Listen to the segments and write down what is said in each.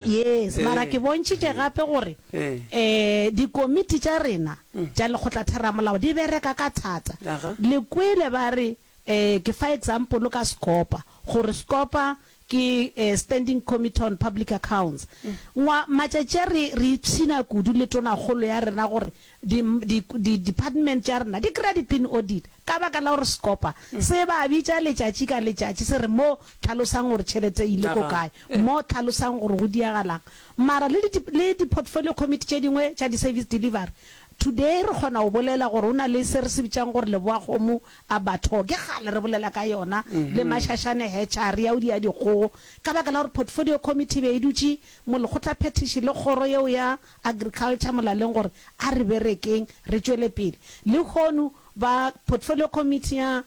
Yes, mara ke bontšhitše gape gore dikomiti tša rena tša lekgotlatheramolao di bereka ka thata. Le kwele ba re, ke fa example ka Scopa, gore Scopa ke Standing Committee on Public Accounts. Matšatši a re ipshina kudu le tonakgolo ya rena gore Di, di, di department tša rena di kry-a di-pin audit ka baka la gore sekopa se ba bitša letšatši ka letšatši se re mo hlalosang gore tšhelete e ile ko kae, mo hlalosang gore go diagalang. Mara le di, le di-portfolio committee tše dingwe tša di-service delivery, today re kgona go bolela gore go na le se re se bitšang gore Leboakgomo Abattoir, ke kgale re bolela ka yona, le Mashashane Hatchery ya go dia dikgogo, ka baka la gore portfolio committee e be e dutše mo lekgotlaphethiši le kgoro yeo ya Agriculture molaleng gore a re berekeng re tšwele pele. Lehono ba Portfolio Committee ya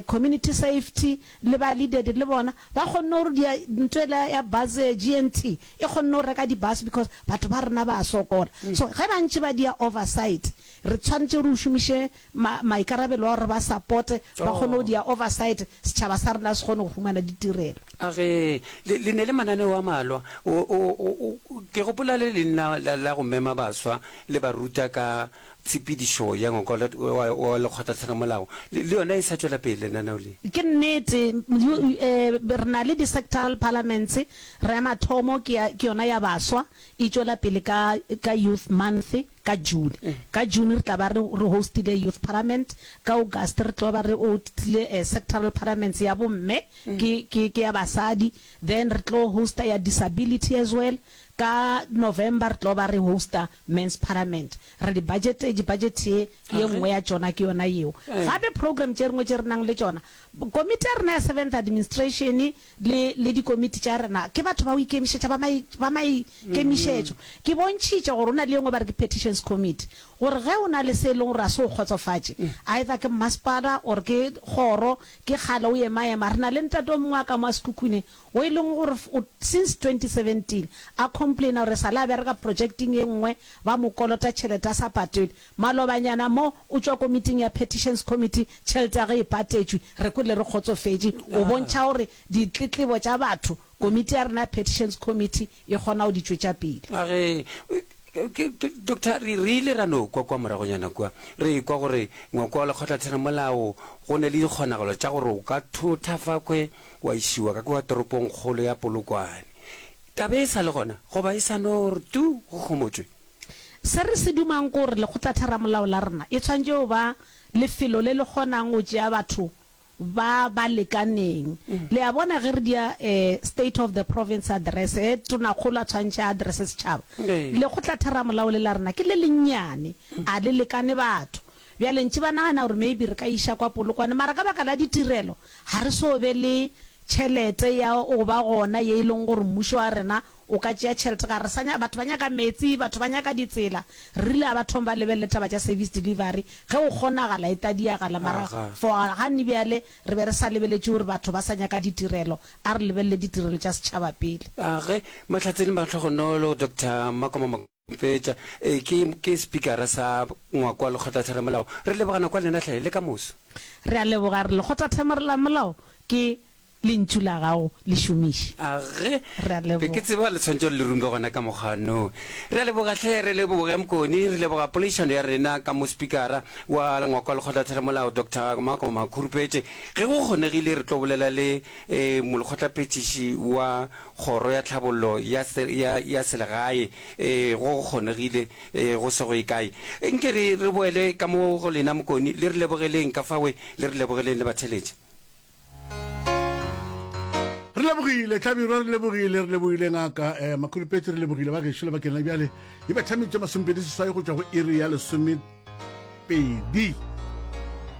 Community Safety le ba Leaded le bona ba kgonne gore dia nto ela ya bus GNT e kgonne go reka di-bus because batho ba rena ba sokola. So ge ba ntše ba dia oversight re tshwanetše gore o šomiše ma, maikarabelo a gore re ba sapote, ba kgone go Oh. dia oversight, setšhaba sa rena se kgone go humana ditirelo. A ge, le, le ne le mananeo a malwa. O, o, o, o, ke gopola le leng la, la, la go mema baswa, le ba ruta ka tshepedišo ya ngwako la, wa, wa Lekgotlatlhanamolao. Le, le yona e sa tšwela pele lenaneo le. Ke nnete, you, you, eh, re na le di-sectoral parliaments, re ya mathomo ke ya, ke yona ya baswa, e tšwela pele ka, ka Youth Month. ka June. Ka June re tla ba re re hostile Youth Parliament, ka August re tlo ba re hostile Sectoral Parliaments ya bomme, ke ke ke ya basadi, then re tlo hosta ya Disability as well, ka November re tlo ba re hosta Men's Parliament. Re di budgetetše, budget ye ye nngwe ya tšona ke yona yeo. Gape program tše dingwe tše re nang le tšona, komiti ya rena ya Seventh Administration, le, le dikomiti tša rena, ke batho ba go ikemišetša, ba mai, ba maikemišetšo. Ke bontšhitše gore go na le ye nngwe ba re ke Petitions Committee, gore ge o na le se e lego gore ga se go kgotsofatše, either ke mmasepala or ke kgoro, ke kgale o ema-ema. Re na le ntate o mongwe wa ka mo a Sekhukhune, wo e lego gore o, since 2017, a complainer gore e sa le a bereka projecteng ye nngwe, ba mo kolota tšhelete a sa patwele. Malobanyana mo, o tšwa komiting ya Petitions Committee, tšhelete ya ge e patetšwe, re kwele re kgotsofetše. O bontšha gore ditletlebo tša batho, komiti ya rena ya Petitions Committee e kgona go di tšwetša pele. Ga re, Doctor, re ile ra no kwa kwa moragonyana kua, re ekwa gore ngwakwa wa lekgotlatheramolao go na le dikgonagalo tša gore o ka thotha fakhwe wa išiwa ka kwa toropongkgolo ya Polokwane. Taba e sa le gona, goba e sa no re tu go homotšwe? Se re se dumang ke gore lekgotlatheramolao la rena e tshwanetše go ba lefelo le le kgonang go tšea batho ba ba lekaneng. Le a bona, ge re dia State of the Province Address, ge Tonakgolo a tshwantšha a address setšhaba, lekgotlatheramolao le la rena ke le lennyane, a le lekane batho. Bjale ntše ba nagana gore maybe re ka iša kwa Polokwane, mara ka baka la ditirelo ga re so be le tšhelete ya go ba gona ye e leng gore mmušo wa rena O ka tšea tšhelete ka re sa nya, batho ba nyaka meetse, batho ba nyaka ditsela. Re rile a ba thome ba lebelele taba tša service delivery, ge go kgonagala e ka diagala, mara for gane bjale re be re sa lebeletše gore batho ba sa nyaka ditirelo, a re lebelele ditirelo tša setšhaba pele. Ge Mahlatse le Mahlogonolo, Doctor Makoma Mokete. Fetša. Ee, ke, ke sepikara sa ngwako wa Lekgotlatheramolao. Re leboga nako ya lena, hle, le ka moso. Re a leboga, re Lekgotlatheramolao ke Lentšu la Gago, le šomiše. A ge Re a be ke leboga. tseba Letswantšho le le rumbe gona ka mokgwa no. Re a leboga, hle, re leboge Mkoni, re leboga poledišano ya rena ka mo sepikara wa ngwako wa Lekgotlatheramolao, Doctor Makoma Makhurupetse. Ge go kgonegile re tlo bolela le, ee, molekgotlaphethiši wa Kgoro ya Tlhabollo ya, ya, ya Selegae, ee, go go kgonegile, ee, go sego ye kae. Nke re, re boele ka mo go lena mokoni, le re lebogeleng ka fawe, le re lebogeleng le batheletše. Re lebogile, Hlabirwa, re lebogile, re lebogile, Ngaka, ee, Makhulupetši, re lebogile, ba gešo, lebakeng la bjale. Di betha tše masomepedi seswai go tšwa go iri ya lesomepedi.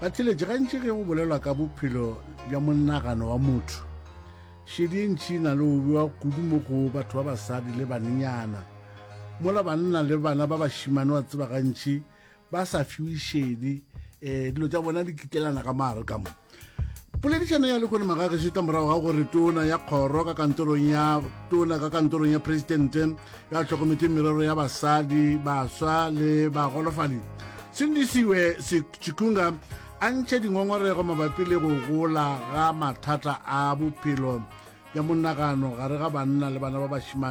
Batheletši, gantši ge go bolelwa ka bophelo bja monagano wa motho, Šedi e ntši e na le go bewa kudu mo go batho ba basadi le banenyana. Mola banna le bana ba bašimane wa tseba gantši ba sa fiwe šedi, um dilo tša bona di kitlelana ka mare ka mo. Poledišano ya lekone magageše ka morago ga gore tona ya kgoro ka kantorong ya tona ka kantorong ya presidente ya tlhokometseng merero ya basadi baswa le bagolofadi sindisiwe chikunga A ntšha dingongorego mabapi le go gola ga mathata a bophelo bja monagano gare ga banna le bana ba bašemane.